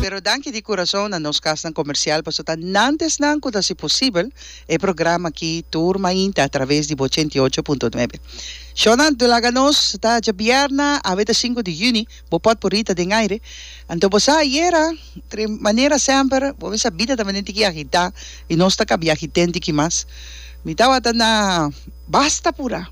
Pero danki di kurason na nos kasnan komersial paso ta nantes nan ku ta hasi posibel e programa aki tur mainta a traves di bo ochenta i ocho punto nuebe. Shownan do laga nos ta djabièrna awe ta sinku di yüni bo pòtporita den aire anto bo sa ayera tre manera semper bo mester a bida tambe den tiki agitá i nos ta kabi agitén tiki mas mi tabata na basta pura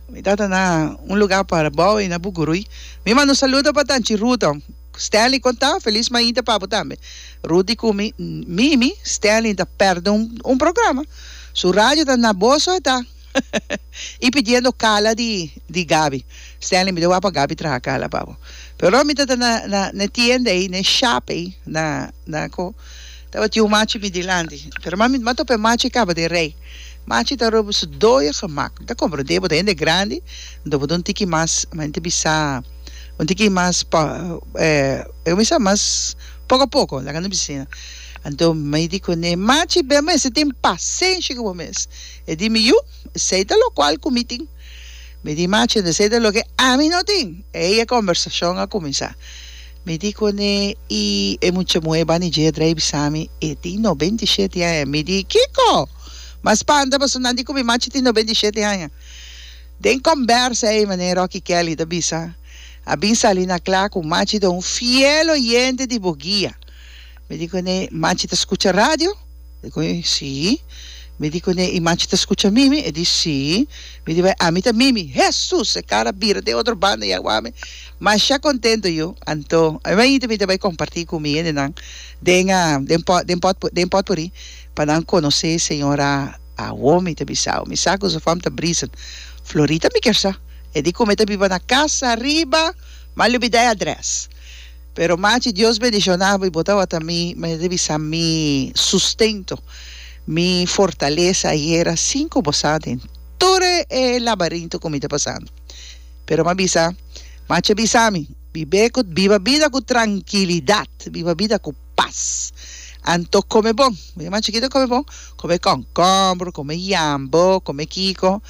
Mi tabata na un luga pa Rabou i na Bugurui. Mi manda un saludo pa Tanchi Ruto. Stanley kon ta felis mainta pa bo tambe. Ruti ku mi, Mimi, Stanley ta pèrdè un un programa. Su radio ta na boso e ta i pidiendo kala di di Gaby. Stanley mi ta wak pa Gaby traha kala pa bo. Pero mi tabata na na na e tienda ei, na e shap ei, na na ko. Tabatin un machi mi dilanti, pero mi no a topa e machi e kaba di rei. Machi ta roba su doyo gemak. Mi ta komprondé, bo ta hende grandi, anto bo ta un tiki mas, mi ta bisa, un tiki mas kuminsá, mas poko a poko, laga no bisa asina. Anto mi di kuné, Machi, bo mester tin pasenshi ku bo mes. E di mi, Yu, esei ta lokual ku mi tin. Mi di, Machi, esei ta loke ami no tin. Ei e kombersashon a kuminsá. Mi di koné i e mucha muhé bani dje dra i bisa mi, E tin nobenta i sheti aña. Mi di, Kiko? Mas spanta pasobra nan di ku mi machi tin nobenta i sheti aña. Den kòmbersa ei manera Rocky Kelly ta bisa, a bin sali na kla ku machi ta un fiel oyente di Boguia. Mi di cu ne, Manchi ta scucha radio? E cu, Si. Mi di cu ne, I manchi ta scucha Mimi? E di, Si. Mi di, Bai, ami ta Mimi. Hesus! E cara bira den otro banda y a wak mi. Masha contento yu. Anto, ami bai yinti bini ta bai comparti cu mi hende nan den, den pot, den pot, den potpourri pa nan conoce e señora awor mi ta bisao. Mi sa cu su fam ta brisa Florita mi kier sa. E di cu me ta biba na casa riba, mal lubida e adres. Pero machi Dios bendiciona bo y bo tabata mi mester di bisa mi sustento, mi fortaleza ayera sin cu bo sa den toda e labarinto cu mi ta pasando. Pero mi a bisa, machi a bisa mi, bibe cu, biba bida cu tranquilidad, biba bida cu paz. Anto come bon, mi machi quita come bon, come konkombro, come yambo, come kiko.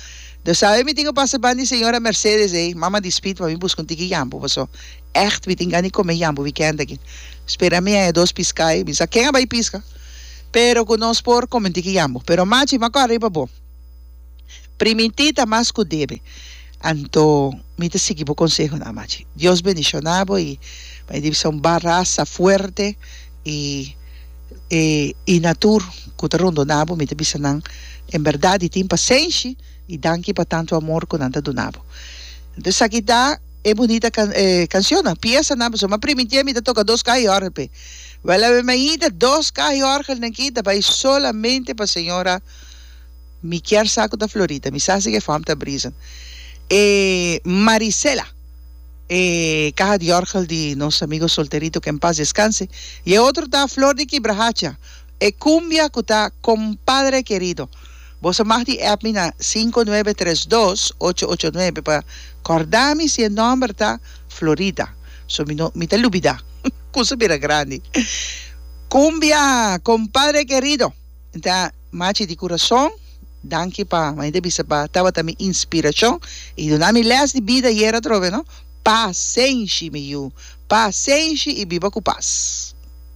Do sabe mi tin cu pasa ban di señora Mercedes ey, mama di Speed pa mi busca un tiki yambo paso. Echt mi tin gana di come yambo weekend aki. Spera mi haya dos piscai. Mi sa ken a bay pisca. Pero cu nos por come un tiki yambo. Pero machi mi a cora riba bo. Priminti ta mas cu debe. Anto mi ta sigui bo conseho nan machi. Dios bendiciona bo y bay di bisa un barasa fuerte y e y na tur cu ta rondona bo mi ta bisa nan en berdad y tin pasenshi y danki pa tanto amor cu nan ta duna bo. Esaki ta. e bunita cancionnan, piesanan pasobra mi a primintí ami ta toca dos caha y orgel p'e. Wel awe mi a yinta dos caha y orgel den ki ta bay solamente pa señora mi kier sa cu ta Floritha, mi sa si cu e fom ta brisa e Marisela e caha di orgel di nos amigo Solterito que en paz descanse y e otro ta Flor di Kibrahacha. E cumbia cu ta Compadre Querido. Bo sa mag di app mi na sinku nuebe tres dos ocho ocho nuebe pa corda mi si e nomber ta Florida so mi no mi ta lubida cosa bira grandi Cumbia Compadre Querido Entá machi di curason danki pa mainta bisa pa tabata mi inspiracion y duna mi les di bida ayer atrobe no Pasenshi mi yu Pasenshi y biba cu pas.